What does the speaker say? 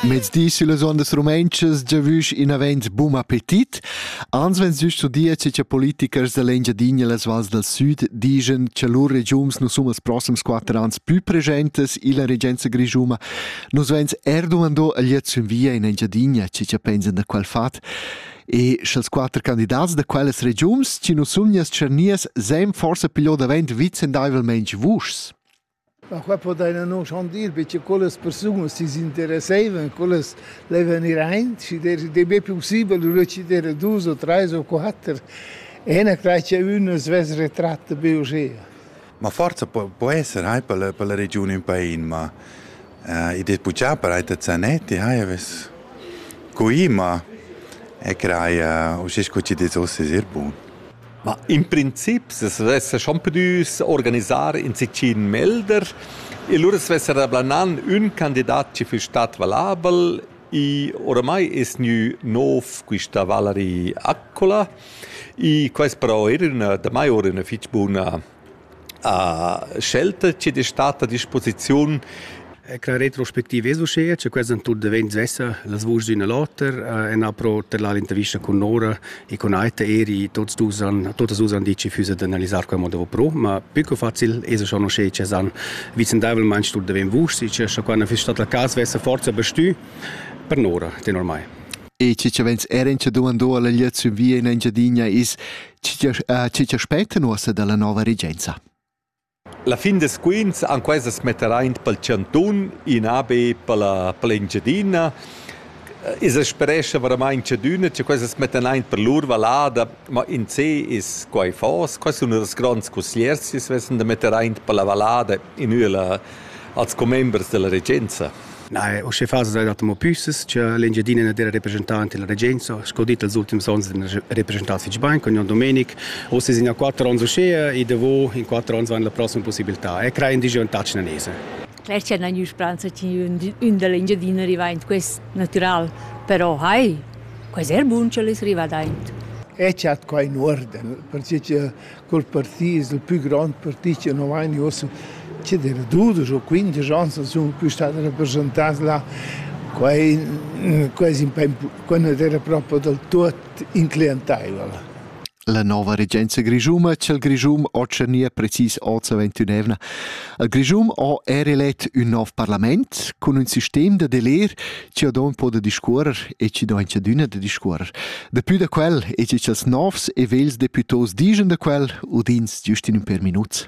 Mezdi sillas ondas rumentschas giavüsch inavent bun appetit. Ans vens giüst zu dir che cha politikers da l'Engiadina e las vals dal süd digen cha lur regiums nu sun els prossems quatter ans plü presentes illa regenza grischuma. Nus vens er dumando a gliet sün via in Engiadina che cha pensan da quel fat. E sch'els quatter candidats da quellas regiums chi nu sun nias tschernias sem forsa piglio davent vicendaivelmente vuschs. Ma qua podaina non chandir be cha quellas persunas chi's interessaivan, quellas laivan ir aint, schi der dei be pussibel lura chi dera dus o trais o quatter e na crai cha ün as vess retratta be uschea. Ma forsa po, po esser hai per la, per la regiun ün pain, ma uh, id es puchà per eir da Zanetti, hai avess cuì, ma e crai uh, uschè sco chi'd es hoz es eir bun. Ma in princip sez vessa schon pudü s'organisar in sitgin melder e lura svessa rablanan ün candidat chi füss stat valabel i oramai es gnü nouv quista Valerie Accola. I quais però eir üna damai oura üna fich buna a scelta che de stat a disposiziun E la retrospectiva es uschea che quels han tut davent svessa las vuschs d'üna l'oter e n'ha pro terlà l'intervista cun Nora e cun Aita eri tots dus han totas dus han dit che füssa d'analisar quel modo pro, ma più che facil es schon uschea che s'han vicendaivelmaing tut davent vuschs e che scha quando fiss stat la cas svessa forza bestü per Nora tenor mai. E che cha vegns er in cha dumandò alla gliaziun via in Engiadina es Tgi aspecta nuossa dalla nova regenza? La fin des quints han quesas metteraint pel chantun in AB per la per l'Engiadina. I sa sperescha veramaing chadüna cha quesas mettan aint per lur vallada, ma in sé es quai fos. Quai sun ünas gronds cussiers chi svessan da metter aint per la vallada in üela als commembers da la regenza. Na, usche fasa da dato mo püsses cha l'Engiadina na d'era representant illa regenza, sco dit els ultims ons n'ha represchentà fich bain con Jon Domenic. Uss es in ja quatter ons uschea e davo in quatter ons vain la prossima possibiltà e crei indigeantà cinanese. Er c'è una speranza che un dell'Engiadina arriva in quest natural, però hai, quasi è buon che l'es arrivata aint. E c'è qua in orden, perché Col partì es il pü grond partì chi nu vain gnü uossa chi d'eira dudesch o quindesch ans as sun que stat rapreschantats là. Quai quai es ün pa quai nu't era propo dal tuot incliantaivel. La nova regenza grischuma cha'l Grischun ho tschernì precis hoz avant ün'eivna. Il Grischun ho er elet ün nov parlament cun ün sistem da deler chi don po da discuorrer e chi don chadüna da discuorrer. Dapü da quel e chi cha'ls novs e vels deputos digen da quel udins giust in ün per minuts.